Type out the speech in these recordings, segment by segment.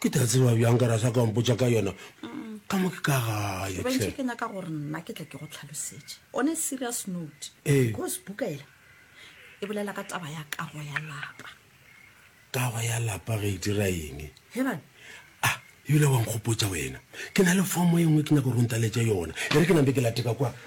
ke tla tseba bjang ka rasa ka mpotsa ka yona ka mo ke ka gae bantši ke nyaka gore nna ke tla ke go tlhalosetše on a serious note Ee. because buka ela e bolela ka taba ya kago ya lapa kago ya lapa ge e dira eng he bana ah ebile wa nkgopotsa wena ke na le fomo e nngwe ke nyaka gore o ntaletše yona e re ke nampe ke lateka kwa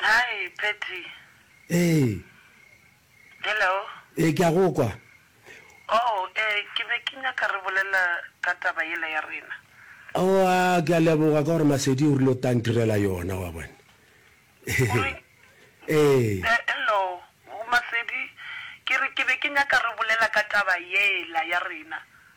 Hi Patty. Ee. Hello. Ee ke a go kwa. Oh ee ke be ke nyaka re bolela ka taba yela ya rena. Oh a ke a leboga ka gore Masedi o rile o tla ntirela yona wa bona. Ee. Eh, hello Masedi ke re ke be ke nyaka re bolela ka taba yela ya rena.